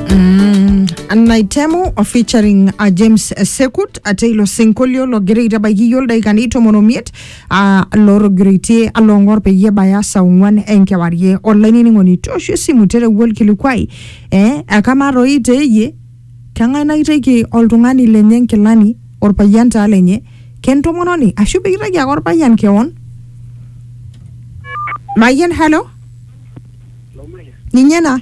Mm, naitemu o featuring uh, james eh, sekut ate ilo sinkolio logira aitabaiki iyio ildaikani tomon omiet uh, lotogiraitie along'or peyie ebaya saa ong'uan enkewarie olainining'oni toosho esimu terewua olkilikuai eh, akamaa toi teeyie keng'ae naiteki oltung'ani lenye nkilani orpayian taa lenye kentomononi ashu pikitaki ake orpayian kewon mayian halo ninye na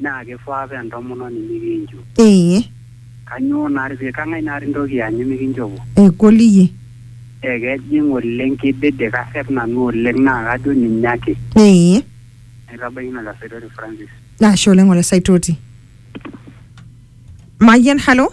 naa keifaa paa entomononi nikinchu. Ee. Kanyoo naa pee kang'ai naa intoki aanyu mikinchopo? Egol iyie. Ee kejing oleng keidede kasep nanu oleng naa kajo ninye ake. Ee. Aitabaiki ina Olesaitoti Francis. Ashe oleng Olesaitoti. Mayian, halo.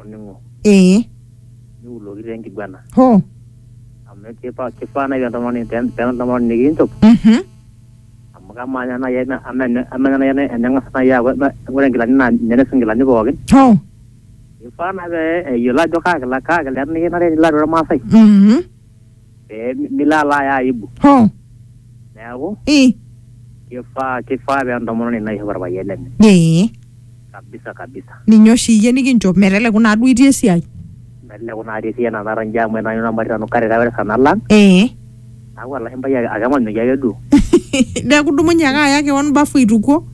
olning'o ee niuloki taa enkiguana hoo amu kipa kifaa nai entomononi pee pee entomononi nikinchop mhm amu kamaa ninye nai ena- ama ene- ama ninye nai ene- eneng'as nai aaku ena- ore inkilani naa ninye naisuj inkilani pookin hoo kifaa naa pee eyiolo ajo kaa kila kaa kila nikinare nilo atua irmaasai mhm pee milo alo aya aibu Hoo. neeku Ii. kifaa kifaa pee entomononi naishop orpayian lenye Ee. kabisa kabisa Ninye oshi iyie nikinchop meteleku naa duo itii esiai. meteleku natii esiai nanu ara nji amu etaa nanu nanu karira ore sa nalang Ee. aaku olashumpai ake ake emanyoki ake duo Neeku idumunye ake aya keon bafu aitukuo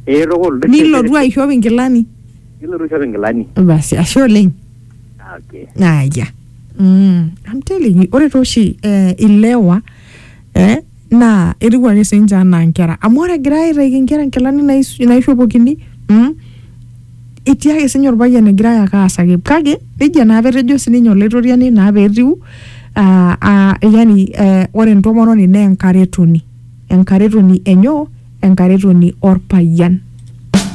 ee tukul nilotu aishop inkilani. nilotu aishop inkilani. Basi ashe oleng. Ah, okay. aya mm, I'm telling you ore tooshi eh, ilewa eh, naa etiu ake sinche anaa nkera amu ore egira aitaiki nkera nkilani nais- naishopokini mm, etii ake sinye orpayian egira ayaka aasaki kake nejia naa petejo sininye olaitoriani naa petiu ah, ah, yani eh, ore entomononi naa enkaretoni enkaretoni enyo enkaretoni orpayian